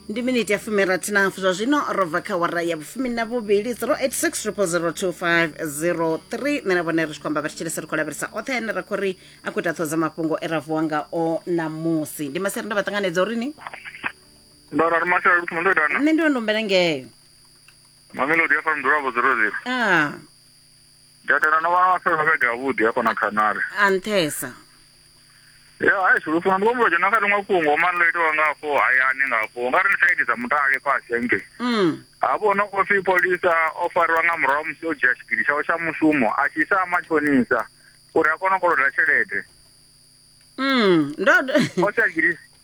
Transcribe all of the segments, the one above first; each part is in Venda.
ndi miniti ya fumirathi na hafu zwa zwino ro bva kha wara ya vhufumi na vhuvhili 0860025003 nṋe na vhone ri tshi khou amba vhathetshelesi ri khou lavhelesa oṱhe ane ra khou ri a khou ita ṱhoho dza mafhungo e ra vuwa ngao ṋamusi ndi masere nda vha ṱanganedza uri ni ndo rari mashela luthoma ndo itana nṋe ndi wa ndombela ngeyo mamelodi ya fara mdulavo zero zero a Datela no vha fela vhege yavhuḓi hafha na khanari. A nṱhesa. Ya hai sulu funa ndi kombo dzhena kha ḽiṅwe fhungo mara ḽo itiwa ngafho hayani ngafho nga ri side dza mutale fhasi hangei. Mm. Hafho no khou pfi polisa o fariwa nga murahu musi o dzhia tshigidi tshawe tsha mushumo a tshi isa matshonisa uri a kone u koloda tshelede. Mm. Ndo. O tsha tshigidi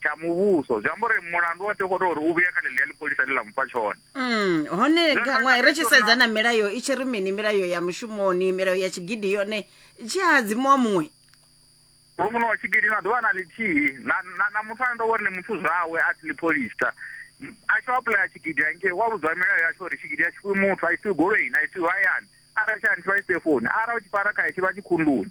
tsha muvhuso zwi amba uri mulandu wa tokota uri u vhuya kha ḽeḽi ya ḽipholisa ḽi ḽa mufha tshone mm, hone gaṅwa ri tshi sedza na milayo i tshi ri mini milayo ya mushumoni milayo ya tshigidi yone tshi hadzimuwa muṅwe uri muṋe wa tshigidi na ḓuvha na ḽithihi na muthu ane ndo vhori ni muthu zwawe a si ḽipholisa a tshi apuḽaya tshigidi hangei wa vhudzwa milayo ya tsho uri tshigidi a tshi fhiwi muthu a isiwi goloini a isiwi hayani arali tshi a nithiwa i sefoni arali u tshi fara khae tshi vha tshi khunduni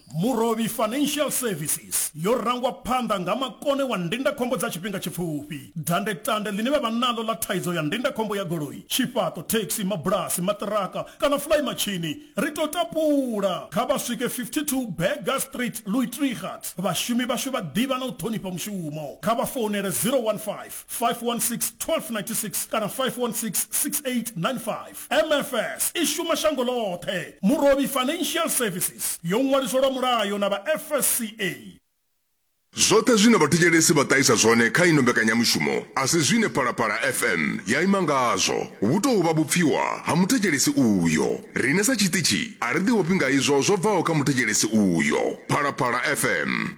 Murovhi Financial Services yo rangwa phanḓa nga makone wa ndindakhombo dza tshifhinga tshipfufhi. Dandetande ḽine vha vha naḽo ḽa thaidzo ya ndindakhombo ya goloi, tshifhaṱo, thekhisi, mabulasi, maṱiraka kana fly matshini, ri tou tapula! Kha vha swike 52 Burger Street, Luitrigat. Vhashumi vhashu vha ḓivha na u ṱhonifha mushumo. Kha vha founele 015 516 1296 kana 516 6895. MFS i shuma shango ḽoṱhe. Murovhi Financial Services yo ṅwaliswa lwa mulayo na vha FSCA. Zwoṱhe zwine vhathetshelesi vha ṱahisa zwone kha ino mbekanyamushumo a si zwine Phalaphala FM ya ima ngazwo. Vhu tou vha vhupfiwa ha muthetshelesi uyo. Riṋe sa tshiṱitshi a ri ḓivhofhi nga izwo zwo bvaho kha muthetshelesi uyo. Phalaphala FM.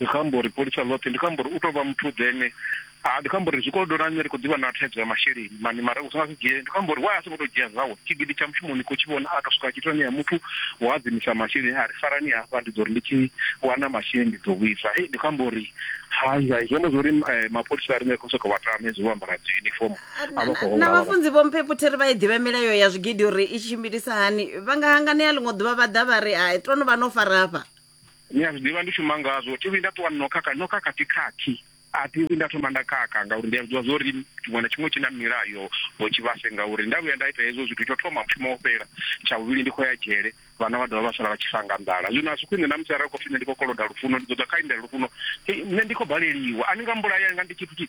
Ndi khou amba uri pholisa ḽoṱhe, ndi khou amba uri u tou vha muthu ḓe ne a, ndi khou amba uri zwikolodoni ha nṋe ri khou ḓi vha na thaidzo ya masheleni mani mara u si nga si dzhie, ndi khou amba uri why a songo tou dzhia zwawe tshigidi tsha mushumo ni khou tshi vhona a tou swika a tshi tou ṋea muthu wo hadzimisa masheleni a ri farani hafha ndi ḓo ri ndi tshi wana masheleni ndi ḓo vhuisa. Hei ndi khou amba uri hai hai zwi amba zwa uri mapholisa a ri nga khou sokou vha tama hezwi vho ambara dzi uniform a vha khou na vhafunzi vho mphepo thiri vha i ḓivha milayo ya zwigidi uri i tshimbilisa hani vha nga hanganea ḽiṅwe ḓuvha vha ḓa vha ri hai to no vha no farafha ni a zwi ḓivha ndi shuma ngazwo thi vhuyi nda ṱuwa no khakha no khakha thi khakhi a thi vhuyi nda thoma nda khakha ngauri ndi a zwiḓivha zwo ri tshiṅwe na tshiṅwe tshi na milayo ho tshivhase ngauri nda vhuya nda ita hezwo zwithu tsho thoma mushumo wo fhela tsha vhuvhili ndi khou ya dzhele vhana vha dovha vha sala vha tshi fanga nḓala zwino a si khwine na musi arali khou pfi nṋe ndi khou koloda lufuno ndi ḓo ḓa kha indela lufuno nṋe ndi khou baleliwa a ni nga mbulaya nga ndi tshithu tshi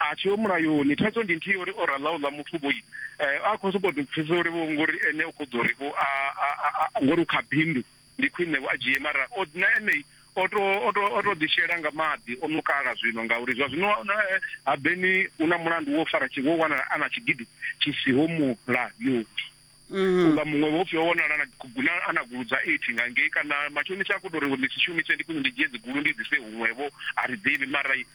a tshi yo mulayoni thaidzo ndi nthihi uri o rala uḽa muthu vho eh, a khou sokou pfhisa uri vho ngori ene u khou ḓo ri vho ngori u kha bindu ndi khwine vho a dzhie mara o na ene o to o to o to ḓishela nga maḓi o no kala zwino ngauri zwa zwino eh, ha beni u na mulandu wo fara tshi wo wana a na tshigidi tshi siho mulayoni Mm-hmm. unga muṅwe vhopfi o vhonala a na gulu dza eight nga ngei kana matshonisa a khou tou ri ndi si shumise ndi khwine ndi dzhie dzigulu ndi dise huṅwevho a ri ḓivhi mara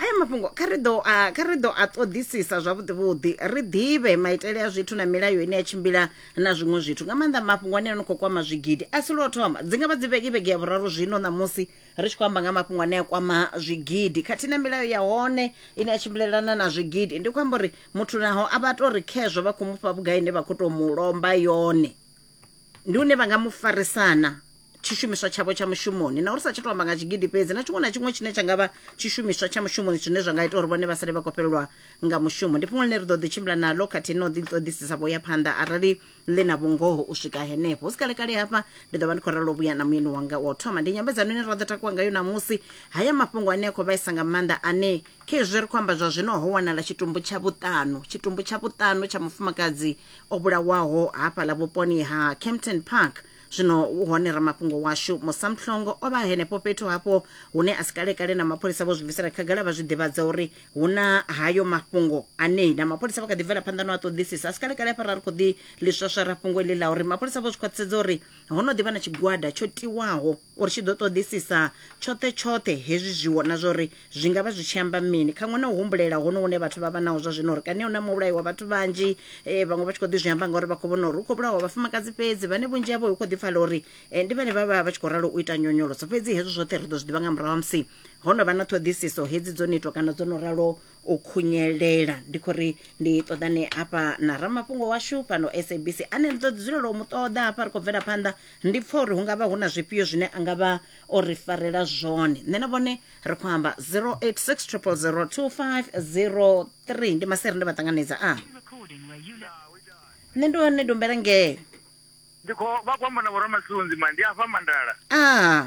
aya mafhungo kha ri ḓo a kha ri ḓo a ṱoḓisisa zwavhuḓi vhuḓi ri ḓivhe maitele a zwithu na milayo ine ya tshimbila na zwiṅwe zwithu nga maanḓa mafhungo ane no khou kwama zwigidi a si lwo thoma dzi ngavha dzi vhege vhege ya vhuraru zwino ṋamusi ri tshi khou amba nga mafhungo ane a kwama zwigidi khathihi na milayo ya hone ine ya tshimbilelana na zwigidi ndi khou amba uri muthu naho a vha to ri khezwo vha khou mufha vhugai ine vha khou to mu lomba yone ndi une vha nga mu farisana tshishumiswa tshavho tsha mushumoni na uri sa tsha tou amba nga tshigidi fhedzi na tshiṅwe na tshiṅwe tshine tsha nga vha tshishumiswa tsha mushumoni zwine zwa nga ita uri vhone vha sale vha khou fhelelwa nga mushumo ndi fhungo ḽine ri ḓo ḓi tshimbila naḽo khathihi na u ḓiṱoḓisisa vho ya phanḓa arali ḽi na vhungoho u swika henefho hu si kalekale hafha ndi ḓo vha ndi khou ralo vhuya na muyeni wanga wa u thoma ndi nyambedzano ine ra ḓo takuwa ngayo ṋamusi haya mafhungo ane a khou vhaisa nga maanḓa ane kha izwi ri khou amba zwa zwino ho wanala tshitumbu tsha vhuṱanu tshitumbu tsha vhuṱanu tsha mufumakadzi o vhulawaho hafhaḽa vhuponi ha Kempton Park. Zwino u hone ramafhungo washu Musa Mhlongo o vha henefho fhethu hafho hune a si kalekale na mapholisa vho zwi bvisela khagala vha zwi ḓivhadza uri hu na hayo mafhungo anei na mapholisa vha kha ḓi bvela phanḓa no a ṱoḓisisa a si kalekale hafha ra ri khou ḓi ḽi swaswara fhungo iḽi ḽa uri mapholisa vho zwi khwaṱhisedza uri ho no ḓi vha na tshigwada tsho tiwaho O ri tshi ḓo ṱoḓisisa tshoṱhe-tshoṱhe hezwi zwiwo na zwa uri zwi nga vha zwi tshi amba mini, khaṅwe na u humbulela hono hune vhathu vha vha naho zwa zwino uri kani hu na muvhulayi wa vhathu vhanzhi, eh, vhaṅwe vha tshi khou ḓi zwi amba ngauri vha khou vhona uri hu khou vhulawa vhafumakadzi fhedzi, vhane vhunzhi havho hu khou ḓi pfala uri eh, ndi vhane vha vha vha tshi khou ralo u ita nyonyoloso. Fhedzi hezwo zwoṱhe ri ḓo zwi ḓivha nga murahu ha musi ho no vha na ṱhoḓisiso hedzi dzo no itwa kana dzo no ralo u khunyelela ndi khou ri ndi ṱoḓane hafha na ramafhungo washu fhano sabc ane ri ḓo ḓi dzulela u mu ṱoḓa hafha ri khou bvela phanḓa ndi pfa uri hu nga vha hu na zwifhio zwine a nga vha o ri farela zwone nṋe na vhone ri khou amba 0860002503 ndi maseri nda vha ṱanganedza a nṋe ndi hone dombela ngee ndi khou vha khou amba na vhoramasunzi ma ndi afha mandala a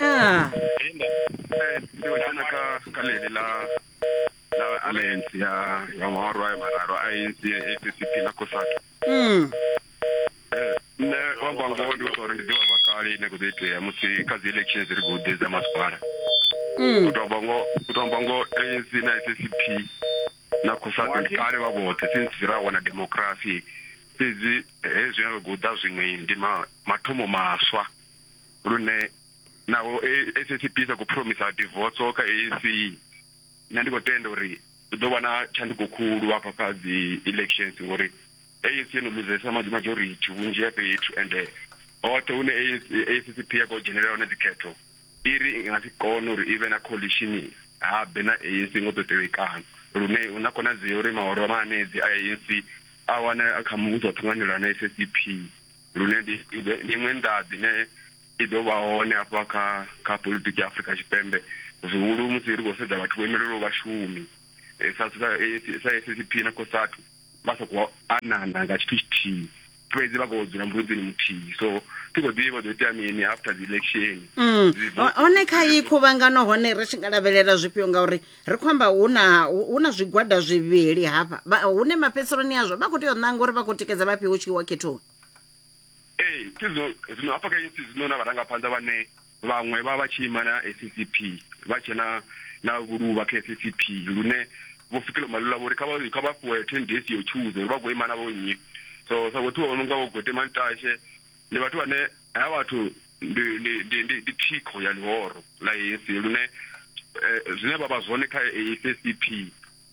Ah. Seo tšena ka ka lele la la alliance ya ya ngwarwa ya mararo a ANC ya ACP na COSATU. Mm. Eh, nṋe u amba ngoho ndi uri ndi ḓivha vhakale ine kho ḓo itea musi kha dzi elections ri khou ḓedza masipala Mm. u tou amba ngoho u tou amba ngoho anc na ssp na cosatu ndi kale vha vhoṱhe since ra wana democracy fhedzi hezwi a ri khou ḓa zwiṅwe ndi ma- mathomo maswa lune naho SACP sa khou phuromisa divoso kha ANC nṋe ndi khou tenda uri hu ḓo vha na tshanduko khulu hafha kha dzi elections ngori ANC yo no luzesa majority vhunzhi ha fhethu ende hoṱhe hune SACP ya khou dzhenelela hone dzikhetho i ri i nga si kone uri i vhe na coalition habe na ANC ngo ḓo tevhekana lune hu na khonadzeo uri mahoro a manedzi a ANC a wane kha muvhuso wa ṱhanganelano SACP lune ndi iṅwe nḓaḓi ne i ḓo vha hone hafha kha kha politiki ya Afrika Tshipembe zwihulu musi ri khou sedza vhathu vho imelelaho vhashumi eh, sa sa SACP eh, na COSATU vha sa khou anana nga tshithu tshithihi fhedzi vha khou dzula mbudzini muthihi so thi khou ḓivha ḓo itea mini after the election mm. hone kha iyi khuvhangano hone ri tshi nga lavhelela zwifhio ngauri ri khou amba hu na hu na zwigwada zwivhili hafha Vha- hune mafhedziseloni azwo vha khou tea u ṋanga uri vha khou tikedza vhafhio hu tshi wa khethoni ee thi zwino zwino hafha kha ANC zwino na vharangaphanḓa vhane vhaṅwe vha vha tshi ima na SCP vha tshe na na vhuluvha kha SCP lune vho fikela malula vhori kha vha kha vha fhiwe 10 days yo tshuza uri vha khou ima na vho nnyi so sa vhothiwa vho no nga vho Gwete Mantashe Ndi vhathu vhane havha vhathu ndi ndi ndi ndi ndi thikho ya ḽihoro ḽa ANC lune zwine vha vha zwone kha SACP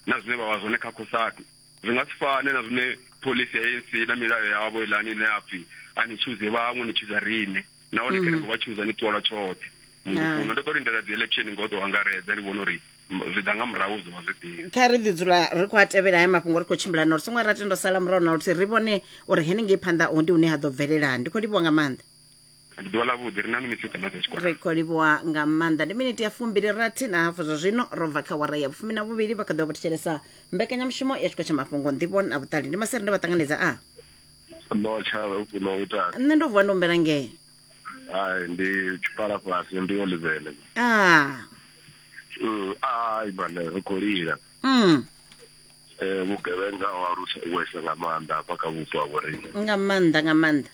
na zwine vha vha zwone kha Cosatu zwi nga si fane na zwine phoḽisi ya ANC na milayo yavho iḽani ine ya pfhi a ni tshuze vhaṅwe ni tshuza riṋe nahone kha ni ngo vha tshuza ni ṱuwa lwa tshoṱhe muṅwe ndo ḓo lindela dzi election ngo ḓo angaredza ndi vhona uri zwi ḓa nga murahu zwi vha zwifhio kha ri ḓi dzula ri khou a tevhela haya mafhungo ri khou tshimbilana uri songo ra tendo sala murahu na luthihi ri vhone uri henengei phanḓa ho ndi hune ha ḓo bvelela ndi khou livhuwa nga maanḓa ndi ḓuvha ḽavhuḓi ri na minitsi dza maḓa tshikwara ri khou livhuwa nga maanḓa ndi miniti ya fumbili rathi na hafu zwa zwino ro bva kha wara ya vhufumi na vhuvhili vha kha ḓo vha thetshelesa mbekanyamushumo ya tshikho tsha mafhungo nḓivho na vhuṱali ndi masere nda vha ṱanganedza a no tsha no ita nṋe ndo vuwa ndo humbela ngee hai ndi tshipala fhasi ndi olivele ah Mm, ai bana ri khou lila mm Eh, vhugevhenga ho alusa wesa nga maanḓa hafha kha vhupo ha vhoriṋe nga maanḓa nga maanḓa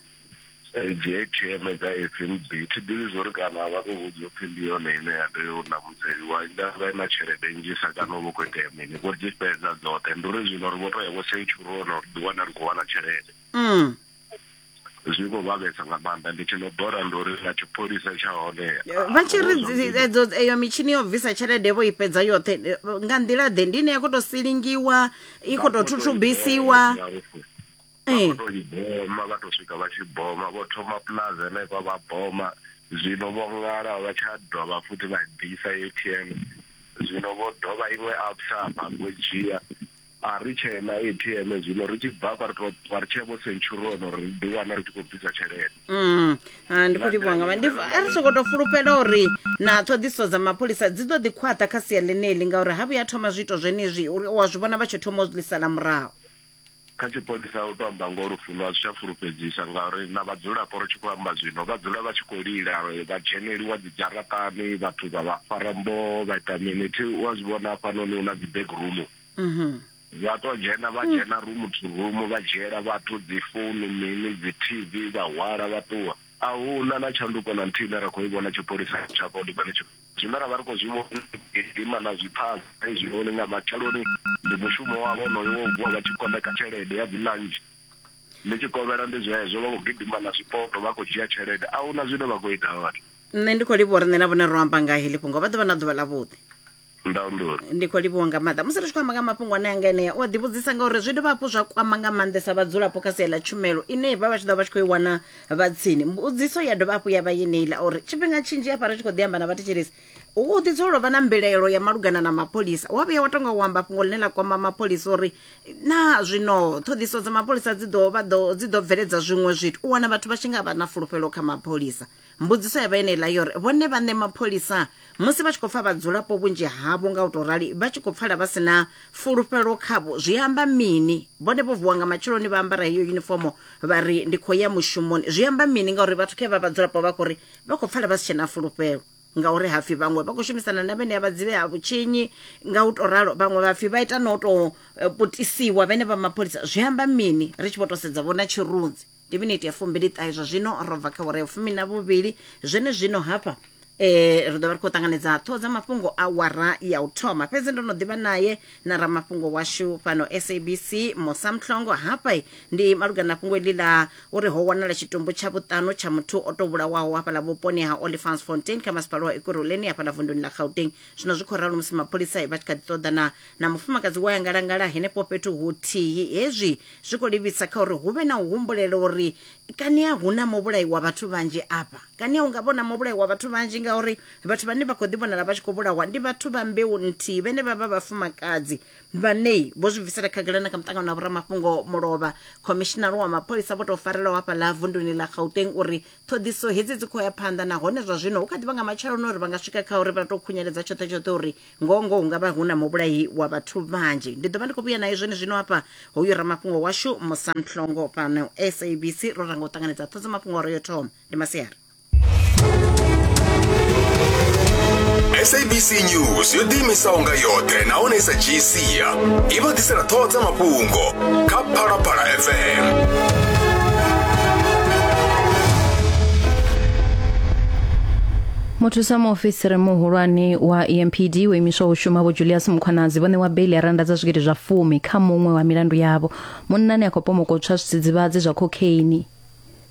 Eh, dzi atm dza fnb thi ḓivhi zwo ri kana vha khou vhudza upfhi ndi yone ine ya tea u namudzeliwa ndavha i na tshelede nnzhisa kana u vha khou itea mini vho dzi fhedza dzoṱhe ndi uri zwino ri vho to ya vho seichurona ri ḓiwana ri khou wana tshelede mm zwi khou vhavhesa nga maanḓa ndi tshi no bora ndo ri na tshipholisa tsha hone vha tshi ri edzo eyo mitshini yo bvisa tshelede vho i fhedza yoṱhe nga nḓila ḓe ndi ine ya khou tou silingiwa i khou tou thuthubisiwa ee to i boma vha to swika vha tshi boma vho thoma plaza henefha vha boma zwino vho ṅala vha tsha dovha futhi vha ḓisa atm zwino vho dovha iṅwe absa hafha vho dzhia A ri tshee na ATM zwino, ri tshi bvafha ri tou ṱuwa ri tshee vho Centurion uri ri ḓi wana ri tshi khou bvisa tshelede. Mm, ha, ndi khou livhuwa nga maanḓa. Ndi- A ri songo tou fulufhela uri na ṱhoḓisiso dza mapholisa dzi ḓo ḓi khwaṱha kha sia ḽeneḽi ngauri ha vhuya thoma zwiito zwenezwi uri wa zwi vhona vha tshi thoma u zwi sala murahu. Kha tshipholisa u tou amba ngoho Lufuno a zwi tsha fulufhedzisa ngauri na vhadzulapo ri tshi khou amba zwino vha dzula vha tshi khou lila vha dzheneliwa dzi dzharaṱani vhathu vha vha fara mboho vha ita mini thi u a zwi vhona hafhanoni hu na dzi back room mhm. vha to dzhena vha dzhena rumu to rumu vha dzhiela vhathu dzi founu mini dzi tv vha hwala vha ṱuwa a hu na na tshanduko na nthihi ine ra khou i vhona tshipholisa tsha kolikoni tshi zwine ra vha ri khou zwi vhonima na zwiphaza hezwinoni nga matsheloni ndi mushumo wavho onoyo wo vuwa vha tshi koḽeka tshelede ya dzilanzhi ndi tshi kovhela ndi zwezwo vha khou gidima na zwipoto vha khou dzhia tshelede a hu na zwine vha khou ita vhathu nṋe ndi khou livha uri nṋe na vhone ro amba nga heḽi fhungo vha ḓo vha na ḓuvha ḽavhuḓi ndaundo ndi khou livhuwa nga maanḓa musi ri tshi khou amba nga mafhungo ane anga enea u a ḓivhudzisa ngauri zwi dovha hafhu zwa kwama nga maanḓesa vhadzulapo kha sia ḽa tshumelo ine vha vha tshi ḓo vha tshi khou i wana vha tsini mbudziso ya dovha hafhu ya vha yeneiḽa uri tshifhinga tshinzhi hafha ri tshi khou ḓi amba na vhathetshelesi u u ḓi dzulela u vha na mbilaelo ya malugana na mapholisa wa vhuya wa tonga u amba fhungo ḽine ḽa kwama mapholisa uri na zwino ṱhoḓiso dza mapholisa dzi ḓo vha ḓo dzi ḓo bveledza zwiṅwe zwithu u wana vhathu vha tshi nga vha na fulufhelo kha mapholisa Mbudziso ya vha yeneiḽa yo ri, Vhone vhaṋe mapholisa musi vha tshi khou pfa vhadzulapo vhunzhi havho nga u tou rali vha tshi khou pfala vha si na fulufhelo khavho zwi amba mini? Vhone vho vuwa nga matsheloni vha ambara heyo yunifomo vha ri ndi khou ya mushumoni. Zwi amba mini ngauri vhathu kha vha vhadzulapo vha khou ri vha khou pfala vha si tshe na fulufhelo ngauri ha pfi vhaṅwe vha khou shumisana na vhenea vhadzivi ha vhutshinyi nga u tou ralo vhaṅwe vha pfi vha ita na u tou eh, putisiwa vhene vha mapholisa. Zwi amba mini ri tshi vho tou sedza vho na tshirunzi? Ndi miniti ya fumbiliṱahe zwa zwino ro bva kha wara ya fumi na vhuvhili zwenezwino hafha eh ri ḓo vha ri khou ṱanganedza ṱhoho dza mafhungo a wara ya u thoma fhedzi ndo no ḓivha naye na ramafhungo washu fhano sabc musa mhlongo hafha ndi malugana na fhungo iḽi ḽa uri ho wanala tshitumbu tsha vhuṱanu tsha muthu o tou vhulawaho hafhaḽa vhuponi ha olifans fontain kha masipala wa ekurhuleni hafhaḽa vunduni ḽa gauteng zwino zwi khou ralo musi mapholisa vha tshi kha ḓi ṱoḓana na mufumakadzi wa ya ngalangala henefho fhethu huthihi hezwi zwi khou livhisa kha uri hu vhe na u humbulela uri kani a hu na muvhulayi wa vhathu vhanzhi afha kani a hu nga vhona muvhulayi wa vhathu vhanzhi ngauri vhathu vhane vha khou ḓi vhonala vha tshi khou vhulawa ndi vhathu vha mbeu nthihi vhene vha vha vhafumakadzi vhanei vho zwi bvisela khagala na kha muṱangano wa vhoramafhungo mulovha khomishinari wa mapholisa vho tou farelaho hafha ḽa vunduni ḽa gauteng uri ṱhoḓiso hedzi dzi khou ya phanḓa nahone zwa zwino hu kha ḓi vha nga matsheloni uri vha nga swika kha uri vha tou khunyeledza tshoṱhe tshoṱhe uri ngoho ngoho hu nga vha hu na muvhulahi wa vhathu vhanzhi ndi ḓo vha ndi khou vhuya naye zwone zwino hafha hoyu ramafhungo washu musamhlongo fhano sabc ro ranga u ṱanganedza ṱhodzo mafhungo oro yo thoma ndi masiari sabc news yo ḓiimisaho nga yoṱhe nahone i sa dzhii sia i vha ḓisela ṱhoho dza mafhungo kha phalaphala fm muthusa muofisiri muhulwane wa empd wo imiswaho u shuma vho julius mukhwanazi vho ṋewa beili ya randa dza zwigidi zwa fumi kha muṅwe wa milandu yavho munnani a khou pomokotswa zwidzidzivhadzi zwa kokheini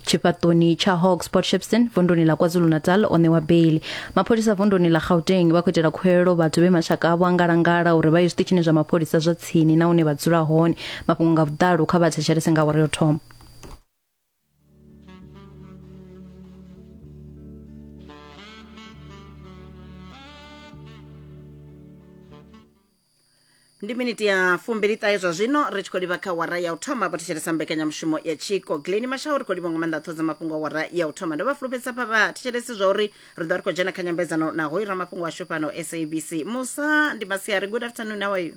tshifhaṱoni tsha hawks port shepston vunduni ḽa kwazulu-natal o ṋewa beili mapholisa vunduni ḽa gauteng vha khou itela khuwelelo vhathu vhe mashaka avho a ngalangala uri vha ye zwiṱitshini zwa mapholisa zwa tsini na hune vha dzula hone mafhungo nga vhuḓalo kha vha thetshelese nga awara yo thoma ndi miniti ya fumbili ṱahe zwa zwino ri tshi khou livha kha wara ya u thoma vhathetshelesa mbekanyamushumo ya tshiko gleni mashaho ri khou livha nga maanḓa ṱhodza mafhungo a wara ya u thoma ndo vha fulufhedzisa pha vhathetshelesi zwa uri ri ḓo ri khou dzhena kha nyambedzano na hoyu ramafhungo washu fhano sabc musa ndi masiari good afternoon how are you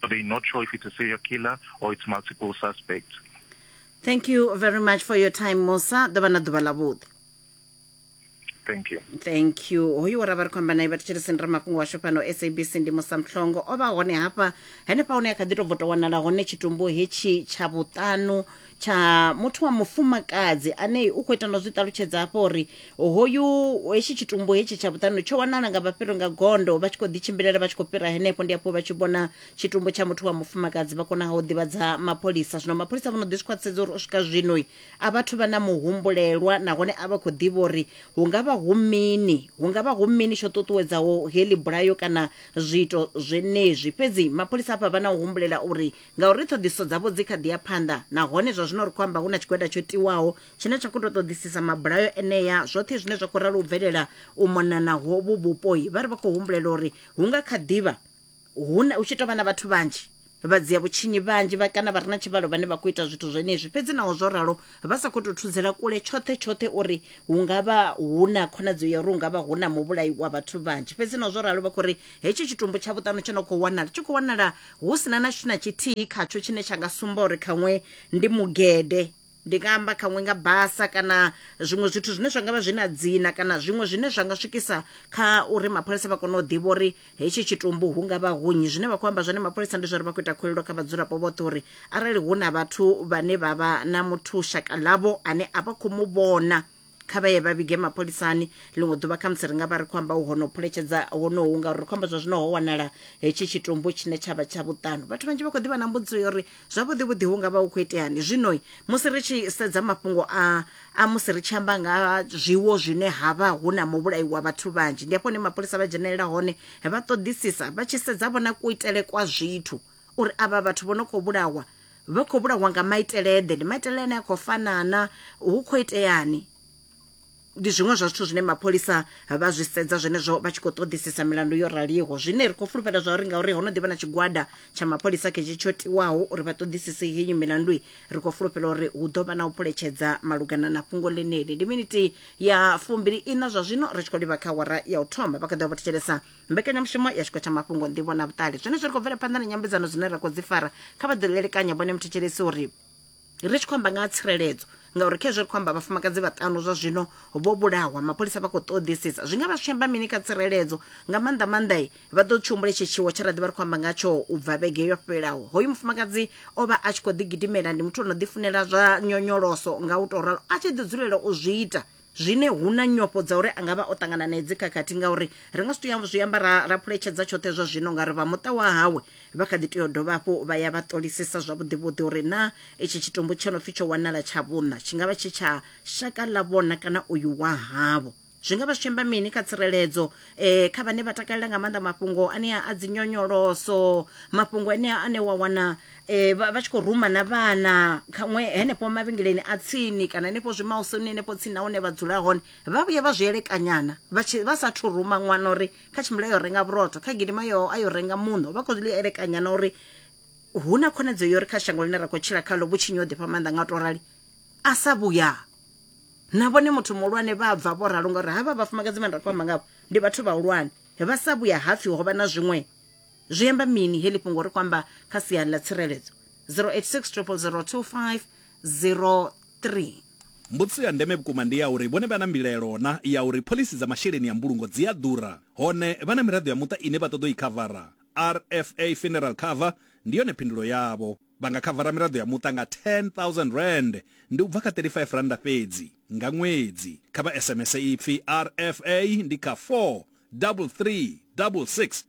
But they're not sure if it's a serial killer or it's multiple suspects. thank you very much for your time musa ḓo vha na ḓuvha ḽavhuḓi Thank you. thank you hoyu wa ra vha ri khou amba naye vhathu tshirisini ra mafhungo washu fhano sabc ndi musamhlongo o vha hone hafha henefha hune a kha ḓi tou bvo tou wanala hone tshitumbu hetshi tsha vhuṱanu tsha muthu wa mufumakadzi ane u khou ita ndo zwi ṱalutshedza hafho uri hoyu hetshi tshitumbu hetshi tsha vhuṱanu tsho wanala nga vhafhiro nga gondo vha tshi khou ḓitshimbilela vha tshi khou fhira henefho ndi hafho vha tshi vhona tshitumbu tsha muthu wa mufumakadzi vha konaho u ḓivhadza mapholisa zwino mapholisa vho no ḓi zwi khwaṱhisedza uri u swika zwino a vhathu vha na muhumbulelwa nahone a vha khou ḓivha uri hu nga vha hu mini hu nga vha hu mini tsho ṱuṱuwedzaho heḽi bulayo kana zwiito zwenezwi fhedzi mapholisa hafha vha na u humbulela uri ngauri ṱhoḓisiso dzavho dzi kha ḓi ya phanḓa nahone zwa zwino ri khou amba hu na tshigwada tsho tiwaho tshine tsha khou tou ṱoḓisisa mabulayo enea. Zwoṱhe zwine zwa khou ralo u bvelela u mona na hovhu vhupoi, vha ri vha khou humbulela uri hu nga kha ḓi vha hu na, hu tshi tou vha na vhathu vhanzhi vha dzia vhutshinyi vhanzhi vha kana vha re na tshivhalo vhane vha khou ita zwithu zwenezwi. Fhedzi naho zwo ralo, vha sa khou tou thudzela kule tshoṱhe tshoṱhe uri hu nga vha hu na khonadzeo ya uri hu nga vha hu na muvhulai wa vhathu vhanzhi. Fhedzi naho zwo ralo, vha khou ri hetshi tshitumbu tsha vhuṱanu tsho no khou wanala tshi khou wanala Hu si na na tshithu na tshithihi khatsho tshine tsha nga sumba uri khaṅwe ndi mugede. Ndi nga amba khaṅwe nga basa kana zwiṅwe zwithu zwine zwa nga vha zwi na dzina kana zwiṅwe zwine zwa nga swikisa kha uri mapholisa vha kone u ḓivha uri hetshi tshitumbu hu nga vha hu nnyi. Zwine vha khou amba zwone mapholisa ndi zwa uri vha khou ita khuwelelo kha vhadzulapo vhoṱhe uri arali hu na vhathu vhane vha vha na muthu shaka ḽavho ane a vha khou mu vhona, kha vha ye vha vhige mapholisani ḽiṅwe ḓuvha khamusi ri nga vha ri khou amba ho no phuletshedza honohu ngauri ri khou amba zwa zwino ho wanala hetshi tshitumbu tshine tsha vha tsha vhuṱanu vhathu vhanzhi vha khou ḓivha na mbudziso ya uri zwavhuḓi vhuḓi hu nga vha hu khou iteani zwino musi ri tshi sedza mafhungo a a musi ri tshi amba nga zwiwo zwine ha vha hu na muvhulayi wa vhathu vhanzhi ndi hafho hune mapholisa vha dzhenelela hone vha ṱoḓisisa vha tshi sedza vhona kuitele kwa zwithu uri avha vhathu vho no khou vhulawa vha khou vhulawa nga maiteleḓe ndi maitele ane a khou fanana hu khou iteani ndi zwiṅwe zwa zwithu zwine mapholisa vha zwi sedza zwenezwo vha tshi khou ṱoḓisisa milandu yo raliho zwine ri khou fulufhela zwa uri ngauri ho no ḓivha na tshigwada tsha mapholisa khetshi tsho tiwaho uri vha ṱoḓisise henyu milandu ri khou fulufhela uri hu ḓo vha na u phuletshedza malugana na fhungo ḽeneli ndi miniti ya fumbili ina zwa zwino ri tshi khou livha kha wara ya u thoma vha kha ḓi vha vho thetshelesa mbekanyamushumo ya tshiko tsha mafhungo nḓivho na vhuṱali zwenezwo ri khou bvela phanḓa na nyambedzano dzine ra khou dzi fara kha vha ḓo elekanya vhone muthetshelesi uri ri tshi khou amba nga ha tsireledzo ngauri khezwo ri khou amba vhafumakadzi vhaṱanu zwa zwino vho vhulahwa mapholisa vha khou ṱoḓisisa zwi nga vha zwi amba mini kha tsireledzo nga maanḓa maanḓa i vha ḓo tshihumbula itshi tshiwo tshe ra ḓi vha ri khou amba nga tsho u bva vhege yo fhelaho hoyu mufumakadzi o vha a tshi khou ḓigidimela ndi muthu o no ḓifunela zwa nyonyoloso nga u tou ralo a tshi ḓi dzulela u zwi ita zwine hu na nyofho dza uri a nga vha o ṱangana na edzi khakhathi ngauri ri nga si tou ya zwi amba ra ra phuletshedza tshoṱhe zwa zwino nga ri vha muṱa wa hawe vha kha ḓi tea u dovha hafhu vha ya vha ṱolisisa zwavhuḓivhuḓi uri na itshi tshitumbu tsho no pfi tsho wanala tsha vhuṋa tshi nga vha tshi tsha shaka ḽa vhona kana uyu wa havho zwi nga vha zwi tshi amba mini kha tsireledzo eh kha vhane vha takalela nga maanḓa mafhungo anea a dzinyonyoloso mafhungo anea ane wa wana e, vha vha tshi khou ruma na vhana khaṅwe henefho mavhengeleni a tsini kana henefho zwimausoni henefho tsini na hune vha dzula hone vha vhuye vha zwi elekanyana vha tshi- vha sathu ruma ṅwana uri kha tshimbila yo renga vhurotho kha gidima yo a yo renga muṋo vha khou zwi elekanyana uri hu na khonadzeo yo uri kha shango ḽine ra khou tshila khalo vhutshinyi ho ḓifha maanḓa nga u to rali a sa vhuya na vhone muthu muhulwane vha bva vho ralo ngauri havha vhafumakadzi vhane ra khou amba ngavho ndi vhathu vhahulwane vha sa vhuya hapfi ho vha na zwiṅwe zwi amba mini heḽi fhungo ri khou amba kha sia ḽa tsireledzo 0860002503 Mbudziso ya ndeme vhukuma ndi ya uri vhone vha na mbilaelo na ya uri phoḽisi dza masheleni a mbulungo dzi a ḓura, hone vha na miraḓo ya muṱa ine vha ṱoḓa u i khavara. RFA Funeral Cover ndi yone phindulo yavho. Vha nga khavara miraḓo ya muṱa nga R10,000, ndi u bva kha R35 fhedzi, nga ṅwedzi. Kha vha SMS ipfi RFA ndi kha 43366